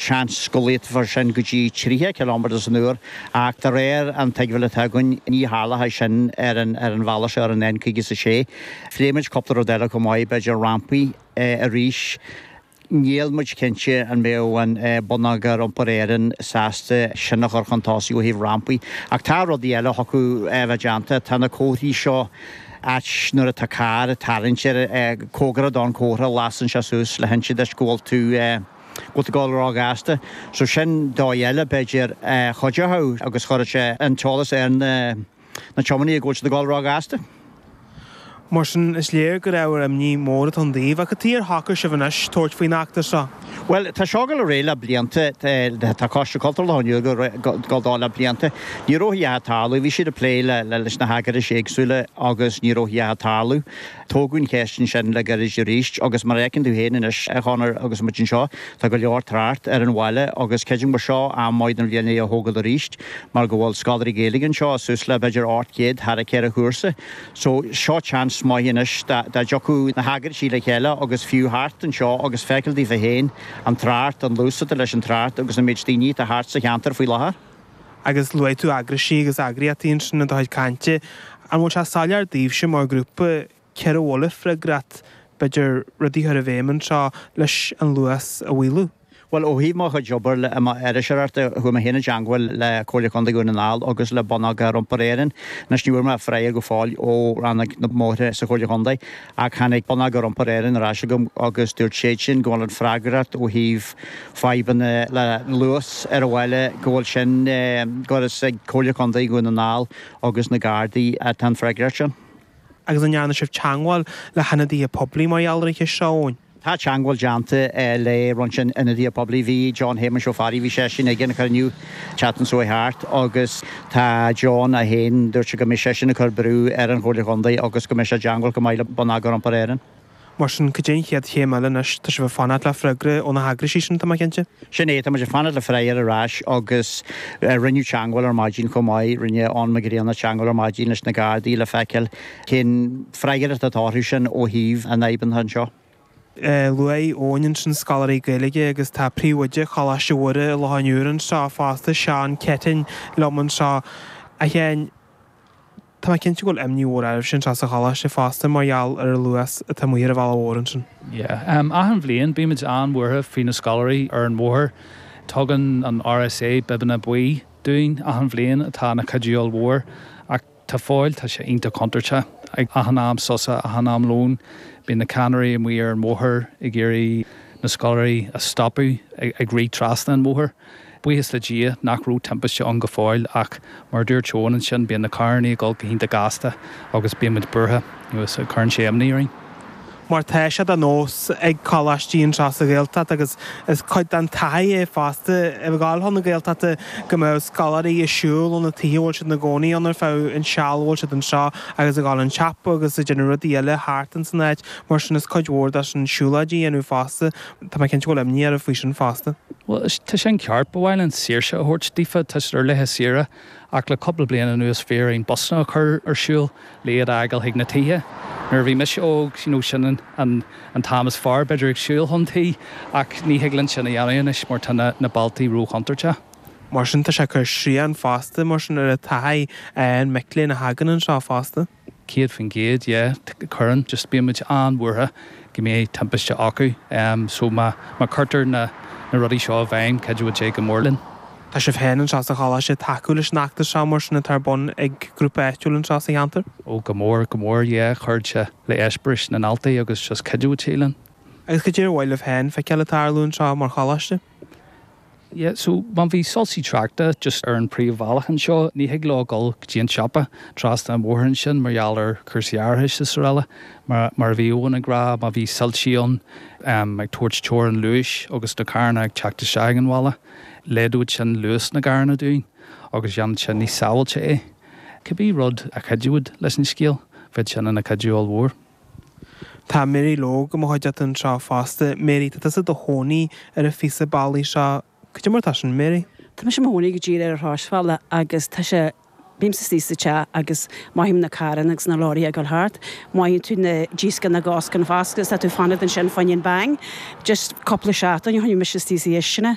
Seans go laghdófar sin go dtí 30 ciliméadar san uair, ach de réir an tuigbheáil atá againn, ní tharlóidh sé sin ar an bhealach seo ar an N56. Phléigh muid cúpla rud eile chomh maith, b'fhéidir rampaí arís. Níl muid cinnte an mbeadh an Bonneagar Iompair Éireann sásta sin a chur chun tosaigh ó thaobh rampaí, ach tá rudaí eile a thiocfadh a bheith déanta. Tá na comharthaí seo, áit nuair atá carr ag tarraingt air, cóngarach ann, comhartha a lasann sé suas le hinse duit go bhfuil tú, Go bhfuil tú ag gabháil róghasta. So sin dóigh eile, b'fhéidir, a chuideochadh agus chuirfeadh sé an t-eolas ar na, na tiománaí go bhfuil tú ag gabháil róghasta. Mar sin, is léir gur ábhar imní mór atá ann daoibh. Ach cad é ar shocraigh sibh anois tabhairt faoin eachtra seo? Bhuel, tá seo ag gabháil ar aghaidh le blianta, tá Coiste Cultúr Loch an Iúir ag gabháil dó le blianta. Ní raibh a dhath ag tarlú, bhí siad ag plé le, leis na heagraisí éagsúla agus ní raibh a dhath ag tarlú. Tógadh an cheist ansin le gairid arís agus mar a fheiceann tú féin anois a Chonor agus muid anseo, tá go leor trácht ar an bhaile agus creidim gur seo am maith don bhliain é a thógáil arís mar go bhfuil scoláirí Gaeilge anseo, suas le b'fhéidir 800 thar a 4 chúrsa. So, seo teans maith anois dá dtiocfadh na heagraisí le chéile agus siúl thart anseo agus feiceáil daofa féin an trácht, an luas atá leis an trácht agus an méid daoine atá thart sa cheantar faoi láthair. agus luaigh tú eagraisí agus eagraíochtaí ansin i do chuid cainte, an bhfuil sé soiléir daoibhse mar ghrúpa cé air a bhfuil freagracht, b'fhéidir rudaí a chur i bhfeidhm anseo, leis an luas a mhaolú? Bhuel, ó thaobh mo chuid oibre iriseoireachta, chuaigh mé féin i dteangmháil le Comhairle Contae Dhún na nGall agus le Bonneagar Iompair Éireann, anois ní bhfuair mé freagra go fóill ó rannóg na mbóithre sa Chomhairle Chontae, Ach tháinig Bonneagar Iompair Éireann ar ais agam agus dúirt siad sin go bhfuil an freagracht ó thaobh fadhbanna le luas ar an bhaile, go bhfuil sin, gur is ag Comhairle Contae Dhún na nGall agus na Gardaí atá an freagracht sin. Agus an ndearna sibh teagmháil le hionadaithe poiblí mar gheall ar an cheist seo, Eoin? Tá teangmháil déanta le roinnt ionadaithe poiblí. Bhí John Shéamuis Ó Fearraigh, bhí seisean ag an chruinniú an tseachtain seo thart agus tá John é féin, dúirt sé go mbeidh seisean ag cur brú ar an Chomhairle Chontae agus go mbeidh sé i dteangmháil chomh maith le Bonneagar Iompair Éireann. Mar sin, cad é an chéad chéim eile anois? Tá sibh ag fanacht le freagra ó na heagraisí sin, tá mé cinnte? Sin é, tá muid ag fanacht le freagra ar ais agus rinneadh teangmháil ar maidin chomh maith, rinne Eoin Mac Grianna teangmháil ar maidin leis na Gardaí le feiceáil, Cén freagracht atá orthu sin ó thaobh na bhfadhbanna anseo? Luaigh Eoin ansin scoláirí Gaeilge agus tá príomhoide Choláiste Mhuire i Loch an Iúir anseo fosta, Seán Keating, liom anseo. A Sheáin, tá mé cinnte go bhfuil imní mhór oraibhse anseo sa choláiste fosta mar gheall ar an luas atá amuigh ar an bhealach mhór ansin. Yeah. Achan bhliain bímid an-bhuartha faoi na scoláirí ar an mbóthar. Tugann an RSA bibeanna buí dúinn achan bhliain atá ina gcuidiú mhór ach. Tá fáil, tá sé iontach contúirteach. Ag achan am sosa, achan am lóin, bíonn na ceannairí amuigh ar an mbóthar ag iarraidh na scoláirí a stopadh ag rith trasna an bhóthair. Buíochas le Dia nach raibh timpiste ann go fóill ach mar a dúirt Eoin ansin, bíonn na carrannaí ag dul go hiontach gasta agus bíonn muid buartha, nó is cuireann sé imní orainn. mar tá sé de nós ag coláistí anseo sa Ghaeltacht agus is cuid den taithí é fosta ag gabháil chun na Gaeltachta go mbeadh scoláirí ag siúl ó na tithe a bhfuil siad ina gcónaí ann ar feadh an seal a bhfuil siad anseo agus ag dul chun an tsiopa agus ag déanamh rudaí eile thart in san áit mar sin is cuid mhór de sin siúlóidí a dhéanamh fosta tá mé cinnte go bhfuil imní oraibh faoi sin fosta. Bhuel, tá sin ceart. Ba mhaith linn saoirse a thabhairt daofa, tá siad ar laetha saoire. ach le cúpla bliain anuas bhí orainn busanna a chur ar siúl le iad a fhágáil chuig na tithe. Nuair a bhí mise óg, you know, sin an an t-am is fearr b'fhéidir ag siúl chun tí, ach ní thig linn sin a dhéanamh anois mar tá na na bealtaí ró-chontúirteach. Mar sin tá sé ag cur srian fosta mar sin ar an taithí ag mic léinn a thagann anseo fosta. 100% yeah cuireann just bíonn muid an-bhuartha go mbeidh timpiste acu em so má má cuirtear na na rudaí seo i bhfeidhm chuideodh sé go mór linn. Tá sibh féin anseo sa choláiste ag tacú leis an fheachtas seo mar sin atá ar bun ag grúpa áitiúil anseo sa cheantar? Oh go mór go mór yeah chuirfeadh sé le eispéiris na ndaltaí agus just chuideodh sé linn. Agus cad é ar mhaith libh féin feiceáil ag tarlú anseo mar choláiste? Yeah, so má bhí soilsí tráchta just ar an bpríomhbhealach anseo, ní thig leo dhul go dtí an siopa trasna an bhóthair ansin mar gheall ar chúrsaí árachais is araile. Mar, mar a bhí Eoin ag rá, má bhí soilsí ann, em, ag tabhairt teorainn luais agus na carranna ag teacht isteach ag an bhaile, laghdódh sin luas na gcarranna dúinn agus dhéanfadh sin níos sábháilte é. Cibé rud a chuideodh leis an scéal, bheadh sin ina chuidiú ollmhór. Tá Mary Logue i mo chuideachta anseo fosta. Mary, tá tusa i do chónaí ar an phíosa bealaigh seo. Cad é mar atá sin, Mary? Tá mise i mo chónaí go díreach ar chrosbhealach agus tá sé, bímse istigh sa teach agus mothaím na carranna agus na leoraithe ag dul thart. Mothaíonn tú díoscán na gcoscán fosta agus tá tú ag fanacht ansin, faoi choinne an bang. Just cúpla seachtain ó shin bhí mise istigh sa chistin